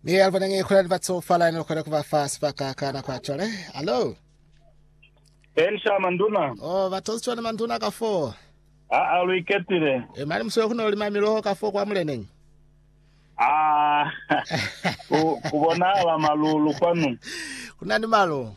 Mi albo nang e khona ni batsofala ni khona ku ba fa sibaka ka nako ya cwale. Hello. Ensha manduna. Oh, batozi cwale manduna ka fo. A a lu iketile. E mali muswe kuno lima miloho ka fo kwa muleneng. Ah. Ku ku bonahala malulu kwanu. Kuna ni malo.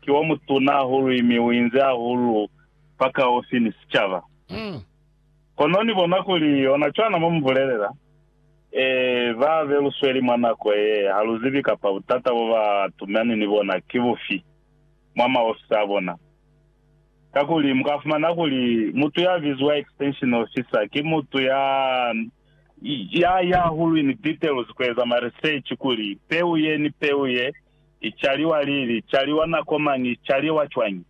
ki wa mutuna hahulu imi u inzi hahulu fakaufi ni sicaba. Kono ni bona kuli ona cwana mo mu bulelela, Ee, ba be lu sweli mwa nako ye, ha lu zibi kapa butata bo ba tumani ni bona ki bufi mwa maofisi a bona. Kakuli mu ka fumana kuli mutu ya biziwa extension officer ki mutu ya, ya, ya hahulu ini details ku eza ma research kuli peu ye ni peu ye I caliwa lili? Caliwa nako mañi? Caliwa cwañi?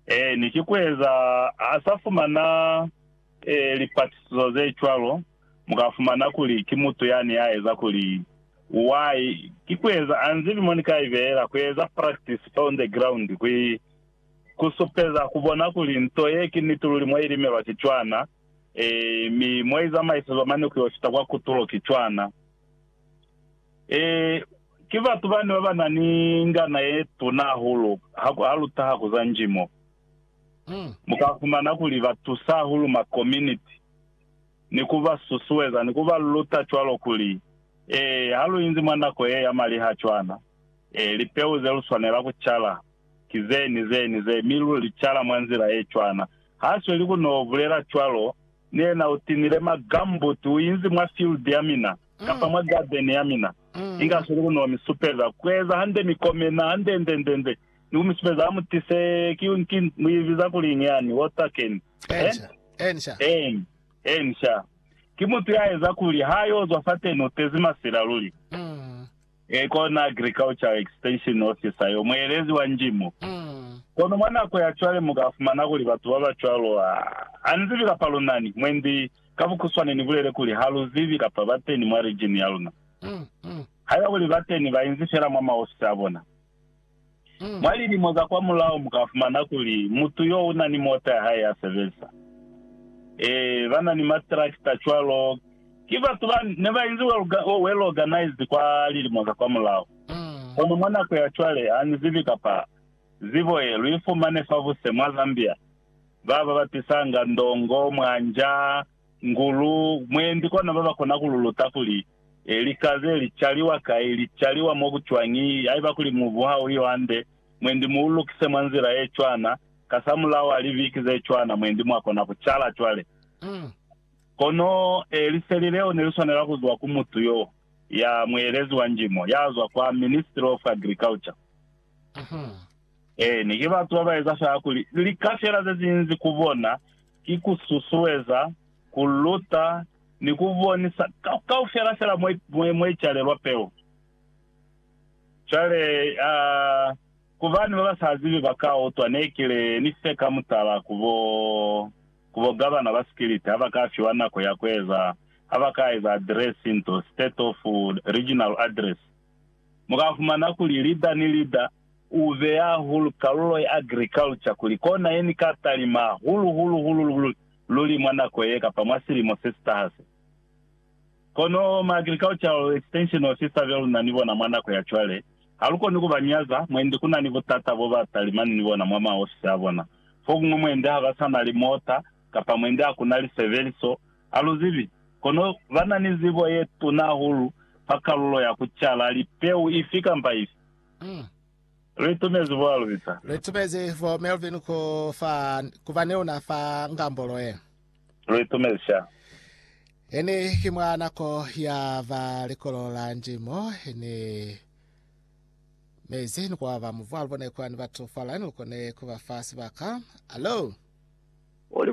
Ee, ni ki kueza ha sa fumana ee, lipatisizo ze cwalo, mu ka fumana kuli ki mutu yani ya eza kuli. Why? Ki kueza a nzibi mo ni ka ibehela, kueza practice fa on the ground, ku, ku supeza, ku bona kuli nto ye ki niti luli mo i limelwa ki cwana, ee, mi mo i zamaisezwa mane ku yo fita kwa kutulo ki cwana. Ee, ki batu bani baba na ni ngana ye tuna hahulu ha lu taha ku za njimo? Mu ka fumana kuli ba tusa hahulu ma kominiti ni ku ba susueza ni ku ba luta cwalo kuli, Ee, ha lu inzi mwa nako ye ya maliha cwana, ee, lipeu ze lu swanela ku cala ki ze ni ze ni ze, mi lu li cala mwa nzila ye cwana. Ha sweli ku no bulela cwalo, Ni yena u tinile ma gumboot u inzi mwa field ya mina, kapa mwa garden ya mina. Inga sweli ku ni wa mi supeza ku eza hande mi komena hande nde nde nde, ni ku mi supeza ha mu tise, ki, ki, mu i biza kuliñi yani? Water can. Eh? Eeni. Eeni, sha. Ki mutu ya eza kuli ha yo zwa fateni u tezi masila luli. Ee, kona Agricultural Extension Officer yo, muelezi wa ndimo. Kono mwa nako ya cwale mu ka fumana kuli batu ba ba cwalo ha ni zibi kapa lu na ni, mwendi, ka bukhuswane ni bulele kuli ha lu zibi kapa ba teni mwa region ya luna. Haiba kuli ba teni, ba inzi fela mwa maofisi a bona. Mwa lilimo za kwamulaho mu ka fumana kuli mutu yo u na ni mota ya hae ya sebeza. Ee, ba na ni matrakita cwalo. Ki batu ba ne ba inzi well organized kwa lilimo za kwamulaho. Kono mwa nako ya cwale, ha ni zibi kapa zibo ye lu i fumane fabuse mwa Zambia, ba ba batisanga ndongo, mwanja, Ku lu mwendi kona ba ba kona ku lu luta kuli, e, lika ze li caliwa kai, li caliwa mo ku cwañi, haiba kuli mubu ha u yo hande, mwendi mu u lukise mwa nzila ye cwana, kasamulaho ha liviki ze cwana mwendi mwa kona ku cala cwale. Kono, e, liseli leo ne li swanela ku zwa ku mutu yo ya muelezi wa njimo, ya zwa kwa Ministry of Agriculture. Ee, ne ki batu ba ba eza fela kuli lika fela ze zinzi ku bona. ki ku susueza, ku luta, ni ku bonisa kaufela fela mo i calelwa peu. Cwale, a ku bani ba ba sa zibi ba ka utwa ne ki le ni fe ka mutala ku bo, ku bo gavana ba sikiliti ha ba ka fiwa nako ya ku eza, ha ba ka eza adiresi nto, State of Regional Address, mu ka fumana kuli lida ni lida, U beya hahulu kalulo ya agriculture kuli kona ye ni ka talima hahulu hulu hulu luli luli mwa nako ye kapa mwa silimo se si taha se. Kono ma agricultural extension officer be luna ni bona mwa nako ya cwale, ha lu koni ku ba nyaza, mwendi ku na ni butata bo ba talimani ni bona mwa maofisi a bona. Fokuñwi mwendi ha ba sa na limota, kapa mwendi ha ku na lisebeliso, a lu zibi. Kono ba na ni zibo ye tuna hahulu fa kalulo ya ku cala lipeu ifi kamba ifi. Li tumezi bo Alvita. Li tumezi bo Melvin ku fa, ku ba ni una fa Ngambolo ye. Li tumezi sha. Ini ki mwa nako ya ba likolo la ndimo, ini mezi ni kwa ba muvu alubone kwa ni batu fa line lukone ku ba fa sibaka. Alo! Oli